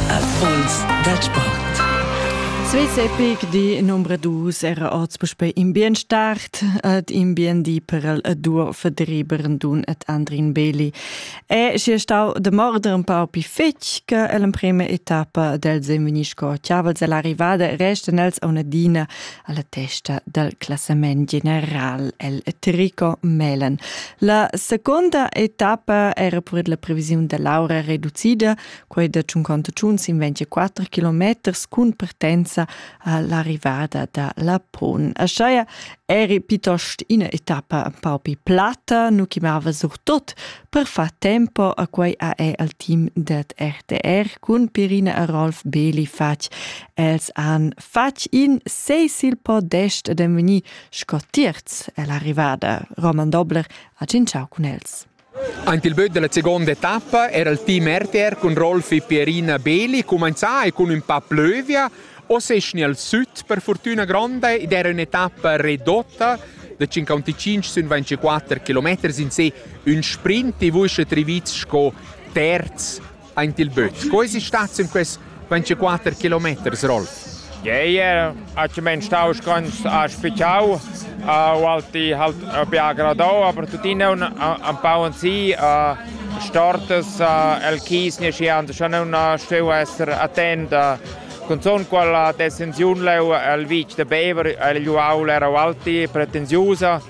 Erfolgs dal sport. Svizzer Peak di numero 2 era oz puspei in bien start et in bien di per el dur verdriberen dun et Andrin Beli. E si stau de morder un pau pi fetg che el in prima etappa del Zemini sco chiaval se l'arrivada resten els a una dina alla testa dal classament general el Trico Melen. La seconda etappa era pur la previsiun da l'aura reducida, quei da 54 km cun partenza all'arrivada da Lapon. Aschaia eri piuttost ina etappa un pau più platta, nu chiamava surtot per far tempo a quei AE al team dat RTR cun Pirina e Rolf Beli fatg els han fatg in sei sil podest ed en vegni sco tirz è l'arrivada. Roman Dobler ha cinciau cun els. Anche il böt della seconda etappa era il team RTR con Rolf e Pierina Beli comincià e con un pa plövia o seschni al sud per fortuna grande ed era un'etappa redotta da 55 sün 24 km in se un sprint e vuisce triviz sco terz Aint il büt. Sco esi stat sün quest 24 kilometers roll? Ei era aci men stau scons a spitau uh, walti halt uh, bi agradau aber tuttina un an pau an si uh, stortas uh, el chis ne schi an schon un steu esser attent uh, con son qual desenziun leu el vitg de Bever el Juaul era walti pretensiusa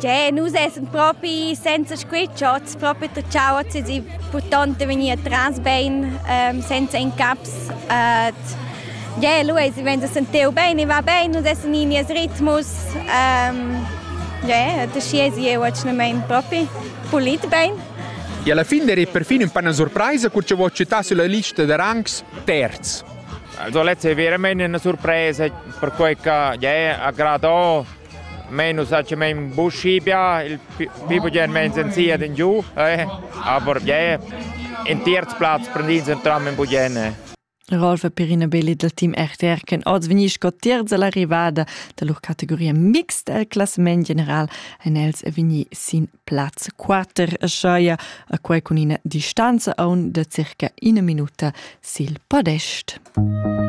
Gie, nus essan propi senza squitschots, propi tgauots e purtonte vegnir tras bein, ähm, senza incaps. Äh, Gie, lu eis vein da sentir bein e va bein, nus essan in nies ritmus. Ähm, yeah, da schi esi jeu atschnamein propi pulit bein. E alla fine era perfino un po' una sorpresa che ci vuoi citare sulla lista di rangs terzi. Also letzte wäre meine eine Surprise, perché che yeah, aggradò Mein nus hagin buschi bia, il pi bugen meins en sia den giu, eh? aber yeah, in terz Platz prendins en tram in bugen. Rolf e Perina Belli dal team RTR ken oz vegni sco terz all'arrivada da lur categoria mixed al classament general ein els e vegni sin plaz 4 a Schaia a quei cun ina distanza aun da circa ina minuta sil podest.